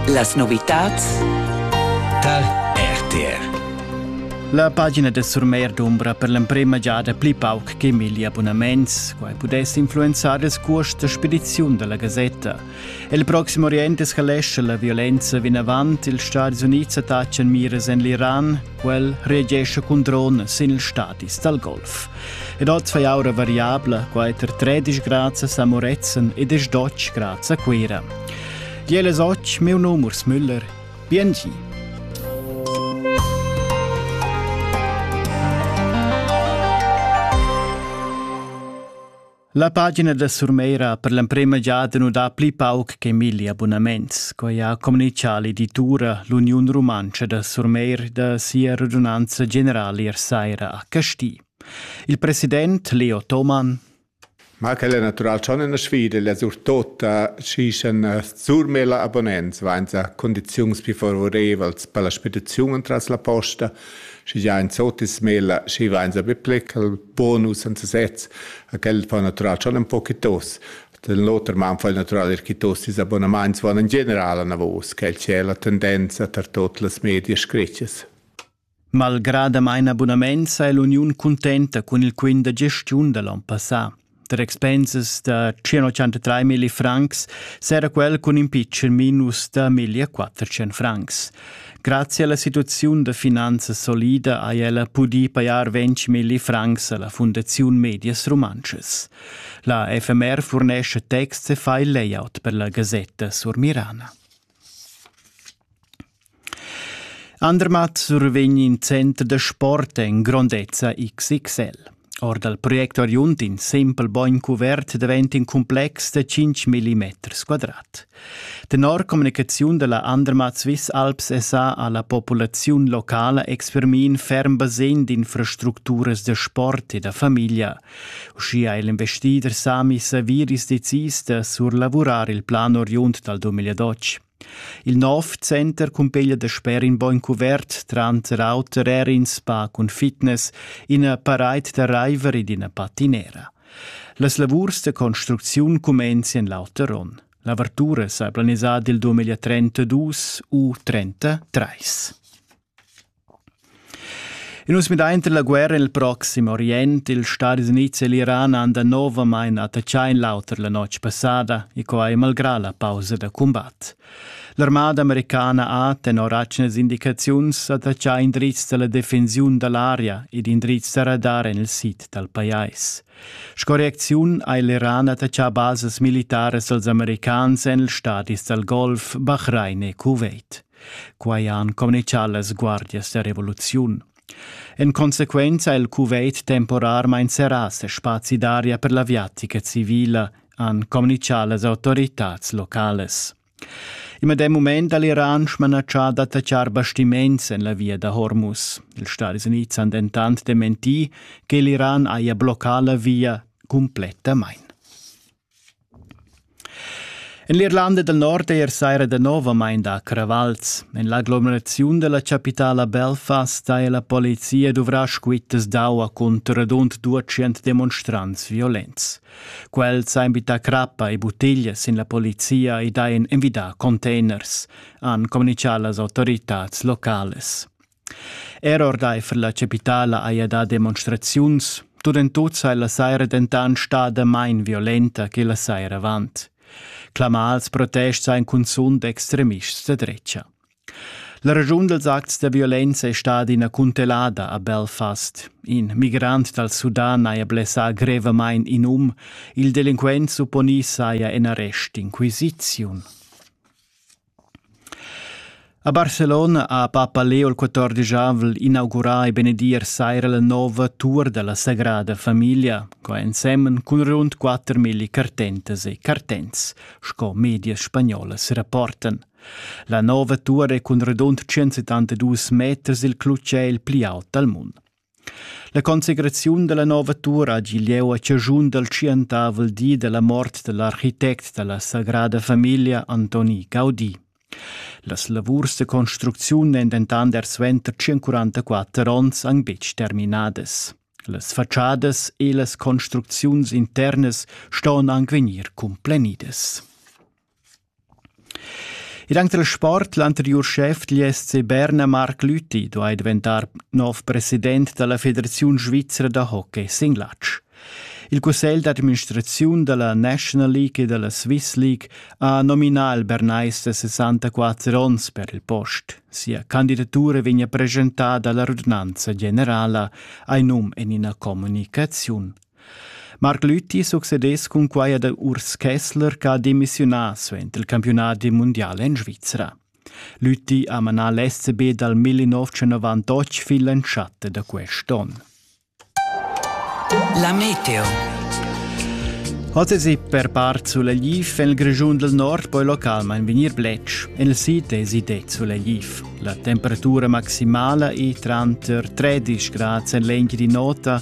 Las novitads tar RTR. La pagina da Surmeir d'Umbra per l'emprema giada pli pauc che milli abonnaments. Quai pudess influenzar il curs da spediziun da la gasetta. Il proxim Orient escalesce la violenza vinavant. Ils Stati Unids attaccan miras en l'Iran. Quel reagesce cun drone sin ils stadis dal Golf. Ed oz fai aura variabla, quai ter tredisch grazias a Moretzen ed es dotg grazie a Cuira. Jel es och meu nom Urs Müller. Biengi. La pagina da Surmeira per l'emprema giada nu dà pli pauc che milli abunaments, quai ha communichà l'editura L'Uniun Rumantscha da Surmeir da sia radunanza generala ier saira a Casti. Il president Leo Thomann Ma quel è natural schon in sfida, la surtota ci san surmela abonnents, vainza condiziuns più favorevals per la spediziun tras la posta – Schi già in zotis mela, schi va in sape plec al bonus senza sez, a quel fa natural schon un po chitos. Den l'oter man fa il natural er chitosis abonaments van in general an avos, quel c'è la tendenza tar tot las media scritches. Malgrada main abunament sa l'uniun cuntenta cun il quint da gestiun da l'on passà. tar expensas da 183 mille francs s'era quel cun impeachment minus da 1400 francs. Grazie alla situazione da finanza solida ha ella pudì pajar 20 mille francs alla Fondazione Medias Romances. La FMR fornisce text e fa il layout per la Gazzetta sur Mirana. Andermatt survegn in center da sport en grondezza XXL. Or dal project oriund in simpel bogn cuvert daventa in complex da 5 mm quadrat. Tenor communicaziun da la Andermatt Swiss Alps SA ha la populaziun locala expermì in ferm basegn d'infrastructuras da sport e da famiglia. Uschia è l'investider Sami Saviris decis da surlavurar il plan oriund dal 2012. Il nov center cumpeglia da sper in bogn cuvert, tranter auter er in spa cun fitness, ina paraid da raiver ed ina patinera. Las lavurs da construcziun cumenzien l'auter onn. L'avertura sa planisada il 2032 u 33. In nus midainter la guerra nel Proxim Orient, ils Stadis Units e l'Iran han danovamain attaccà in l'auter la notg passada e quai malgrà la pausa da cumbat. L'armada americana ha, tenor atgnas indicaziuns, attaccà indrizs da la defensiun da l'aria ed indrizs da radar en il sid dal pajais. Sco reacziun ha l'Iran attaccà basas militaras als americans en ils stadis dal Golf, Bahrain e Kuwait. Quai han communicà las guardias da revoluziun. En consequenza ha il Kuwait temporarmain serrà ses spazi d'aria per l'aviatica civila, han communicà las autoritads locales. Il medem mument ha l'Iran smanatschà d'attaccar bastiments en la via da Hormuz. Ils Stati Uniti han dentant dementi che l'Iran haja bloccà la via cumplettamain. En l'Irlanda dal Nord è er saira danovamain dà cravals. En l'aglomeraziun da la chapitala Belfast haja la polizia duvrà squittas d'aua cunter radund 200 demonstrants violents. Quels han bittà crappa e buttiglias sin la polizia ed hajan envidà containers, han communitgà las autoritads locales. Er ordaifer la chapitala haja dà demonstraziuns, Durentut sei la saira dentant stada main violenta che la saira avant. Clamals protests ein cunzunt extremists da drecha. La ragiun dels acts de violenza è stata ina cuntelada a Belfast. In migrant dal Sudan haja blessà grevamain in um, il delinquent supponì saja en arrest inquisiziun. A Barcelona ha Papa Leo il 14avel inaugurà e benedir saira la nova tur dalla Sagrada Famiglia, co ensemen cun rund 4.000 cartentas e cartents, sco medias spagnolas rapportan. La nova tur è cun radund 172 meters il clutger il pli aut dal mund. La consecraziun dalla nova tur hagi lieu a caschun dal tschientavel di dalla mort dall'architect dalla sagrada famiglia Antoni Gaudi. Las lavurs de construcziun ein dentant er suenter 144 onns anc betg terminadas. Las faciadas e las construcziuns internas ston anc vegnir complenidas. Ed anche dal sport, l'anteriur schef degl SC Berna, Marc Lüthi, duai daventar nov president da la Federaziun svizra da hockey sin latg. Il cussegl d'administraziun da la National League e da la Swiss League ha nominà il Bernais da 64 onns per il post. Sia candidatura vegnia presentada alla radunanza generala, ein num en ina communicaziun. Marc Lüthi succedess cun quai ad Urs Kessler ch'ha demissiunà suenter il campiunadi mundial en Svizra. Lüthi ha manà l'SCB dal 1998 fin l'entschatta da quest'onn. La meteo. Oz per part Sulelif, en il Grischun del Nord poi localmain vegnir bletsch. En il sid esi de Sulelif. La temperatura maximala è tranter 13 grad en l'egl di nota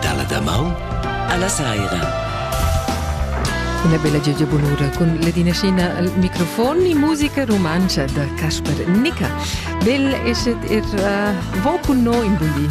dalla damaun alla saira. Una bella Gigi Bonura con la dinascina al microfon e musica romanza da Casper Nica. Bel esset er uh, vo con noi in buglin.